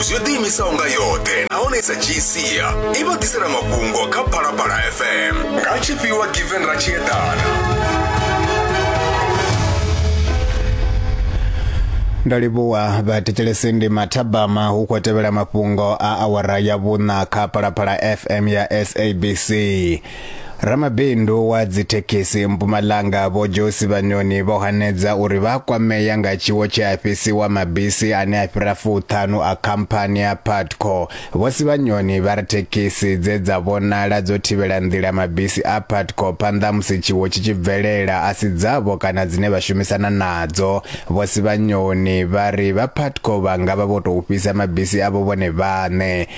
zwi ḓiimisaho nga yoṱhe nahone sa gca i vha ḓisela mafhungo kha phalaphala fm nga tshifhiwa given ra tshi eḓana ndo livhuwa vhathetshelesi ndi mathabama hu khou tevhela mafhungo a awara ya vhuṋa kha phalaphala fm ya sabc Ramabindu wa dzithekhisi Mpumalanga Vho Josi Vhanyoni vho hanedza uri vha kwamea nga tshiwo tshe a fhisiwa mabisi ane a fhira fuṱhanu a khamphani ya Patco. Vho Sivhanyoni vha ri thekhisi dze dza vhonala dzo thivhela nḓila mabisi a Patco phanḓa musi tshiwo tshi tshi bvelela a si dzavho kana dzine vha shumisana nadzo. Vho Sivhanyoni vha ri vha Patco vha nga vha vho tou fhisa mabisi avho vhone vhaṋe.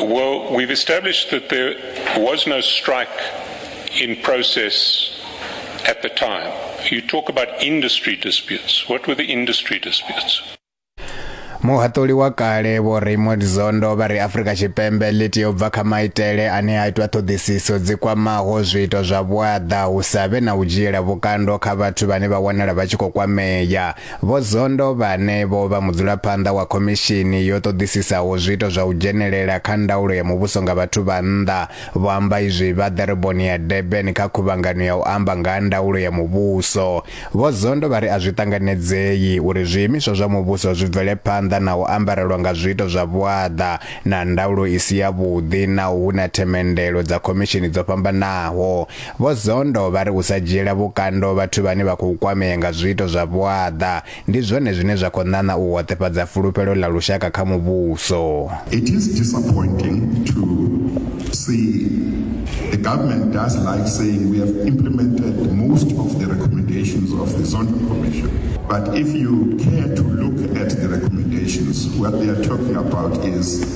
Well, we've established that there was no strike in process at the time. You talk about industry disputes. What were the industry disputes? muhaṱuli wa kale vho raymond zondo vha ri afurika tshipembe ḽi tea u bva kha maitele ane a itwa ṱhoḓisiso dzi kwamaho zwiito zwa vhuaḓa hu sa vhe na u dzhiela vhukando kha vhathu vhane vha wanala vha tshi khou kwamea Vho Zondo vhane vho vha mudzulaphanḓa wa khomishini yo ṱoḓisisaho zwiito zwa u dzhenelela kha ndaulo ya muvhuso nga vhathu vha nnḓa vho amba izwi vha ḓoroboni ya Durban kha khuvhangano ya u amba nga ha ndaulo ya muvhuso. Vho Zondo vha ri a zwi ṱanganedzei uri zwiimiswa zwa muvhuso zwi bvele phanḓa na u ambarelwa nga zwiito zwa vhuaḓa na ndaulo i si yavhuḓi naho hu na themendelo dza khomishini dzo fhambanaho. Vho Zondo vha ri u sa dzhiela vhukando vhathu vhane vha khou kwamea nga zwiito zwa vhuaḓa ndi zwone zwine zwa khou ṋaṋa u hoṱefhadza fulufhelo ḽa lushaka kha muvhuso. It is disappointing to see the government does like saying we have implemented most of the recommendations of the Zondo Commission but if you care to look at the recommendations what they are talking about is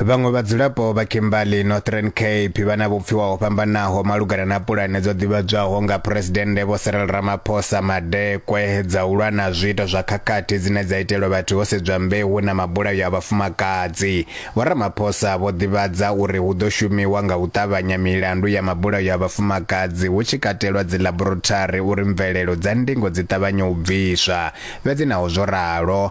Vhaṅwe vhadzulapo vha Kimberley, Northern Cape, vha na vhupfiwa ho fhambanaho malugana na pulane dzo ḓivhadzwaho nga Phresidennde Vho Cyril Ramaphosa Madekwe dza u lwa na zwiito zwa khakhathi dzine dza itelwa vhathu ho sedzwa mbeu na mabulayo a vhafumakadzi. Vho Ramaphosa vho ḓivhadza uri hu ḓo shumiwa nga u ṱavhanya milandu ya mabulayo a vhafumakadzi hu tshi katelwa dzilaborotari uri mvelelo dza ndingo dzi ṱavhanye u bviswa. Fhedzi naho zwo ralo,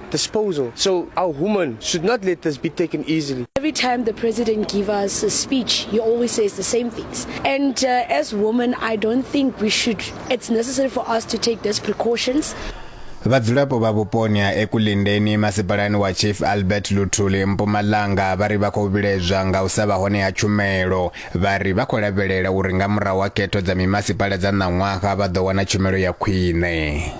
disposal. So our women should not let this be taken easily. Every time the president gives us a speech, he always says the same things. And uh, as women, I don't think we should, it's necessary for us to take those precautions. vhadzulapo vha vhuponi ha ekulindeni masipalani wa chief albert luthuli mpumalanga vha ri vha khou vhilaedzwa nga u sa vha hone ha tshumelo vha ri vha khou lavhelela uri nga murahu ha khetho dza mimasipala dza ṋaṅwaha vha ḓo wana tshumelo ya khwine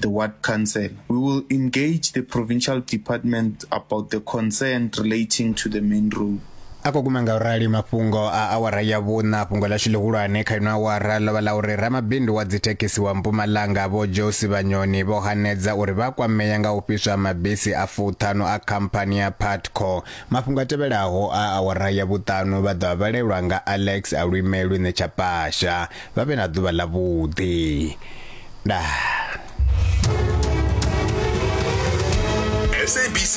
the ward council. We will engage the provincial department about the concern relating to the main road. a khou guma nga u rali mafhungo a awara ya vhuṋa fhungo ḽashu ḽihulwane kha ino awara ḽo vha ḽa uri ramabindu wa dzithekhisi wa mpumalanga vho josi vhanyoni vho hanedza uri vha kwamea nga u fhiswa ha mabisi a fuṱhanu a khamphani ya patco mafhungo a tevhelaho a awara ya vhuṱanu vha ḓo a vhalelwa nga alex alwime lwine tsha pasha vha vhe na ḓuvha ḽa vhuḓi nda SABC